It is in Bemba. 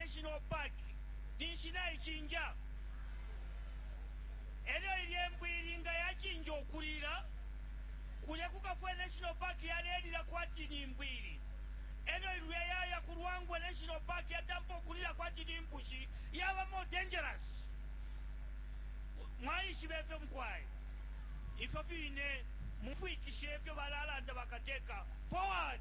National Park, ninshi naicinja. E lyo ilya imbwa ili nga yacinja ukulila kulya ku Kafue National Park yalelila kwati ni mbwa ili, e lyo iluya yaya ku Ruangwa National Park yatampa ukulila kwati ni mbushi, yaba more dangerous. Mwaishiba ifyo mukwai. Ifyo fine mumfwikishe ifyo balalanda bakateka. Forward!